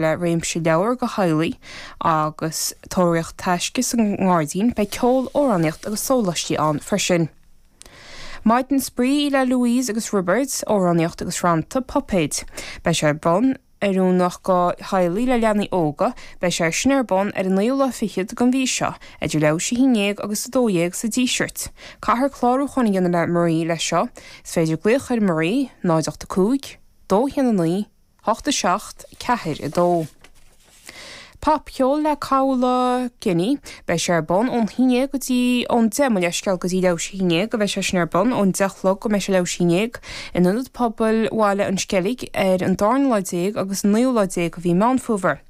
le réimse leabhar do theaghlaigh agus tóraíocht taisce sa ngairdín. Beidh ceol, amhránaíocht agus sólaistí ann freisin. Maidin spraoi le Louise agus Roibeard, amhránaíocht agus rannta, puipéid. Beidh sé ar bun, oiriúnach do theaghlaigh le leanaí óga, beidh sé sin ar bun ar an naoú lá fichead den mhí seo, idir leathuair tar éis a haon déag agus a dó dhéag sa Díseart. Caithfear clárúchán a dhéanamh le Marie leis seo. Is féidir glaoch ar Marie, 0 8 5, 2 1 9, 8 7 4 2 Popcheol le Caola Kenny beidh sé ar bun ón haon déag go dtí ón 10 mo leithscéal go dtí leathuair tar éis a haon déag beidh sé sin ar bun ón 10 a chlog go mbeidh sé leathuair tar éis a haon déag in Ionad Pobail Bhaile an Sceilg ar an darna lá déag agus an naoú lá déag de mhí Meán Fómhair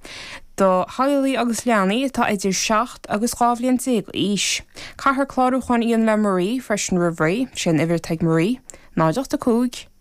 do theaghlaigh agus leanaí atá idir seacht agus dhá bhliain déag d'aois. Caithfear clárúchán a dhéanamh le Marie freisin roimh ré, sé an uimhir atá ag Marie, 0 8 5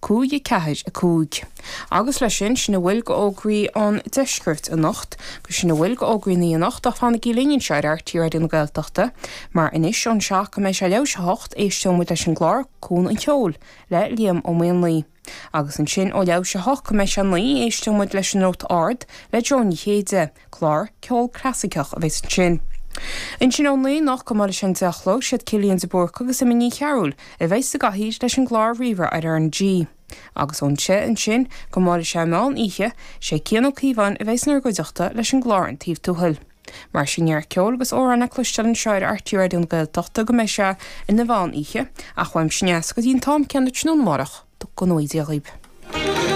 5 4 5 Agus leis sin, sin a bhfuil de fhógraí ón deisceart anocht, agus sin a bhfuil de fhógraí an lae anocht, ach fanaigí linn anseo ar RTÉ Raidió na Gaeltachta, mar anois ón seacht go mbeidh sé leathuair tar éis a 8 éisteoidh muid leis an gclár Cuan an Cheoil le Liam Ó Maonlaí, agus ansin ó leathuair tar éis a 8 go mbeidh sé 9 éisteoidh muid leis An Nóta Ard le Joan Ní Chéide, Clár ceoil clasaiceach a bheas ansin. Ansin ón naoi anocht go mbuailfidh sé an deich a chlog, siad Cillian de Búrca agus Emma Ní Chearúil a bheas sa gcathaoir leis an gclár Rí-Rá ar RnaG. Agus ón deich ansin go mbuailfidh sé an meán oíche, sé Cian Ó Cíobháin a bheas inár gcuideachta leis an gclár An Taobh Tuathail. Mar sin neart ceoil agus amhráin le cloisteáil anseo ar RTÉ Raidió na Gaeltachta go mbeidh sé ina mheán oíche, ach uaimse anois go dtí an t-am céanna tráthnóna amárach go ngnóthaí Dia dhaoibh.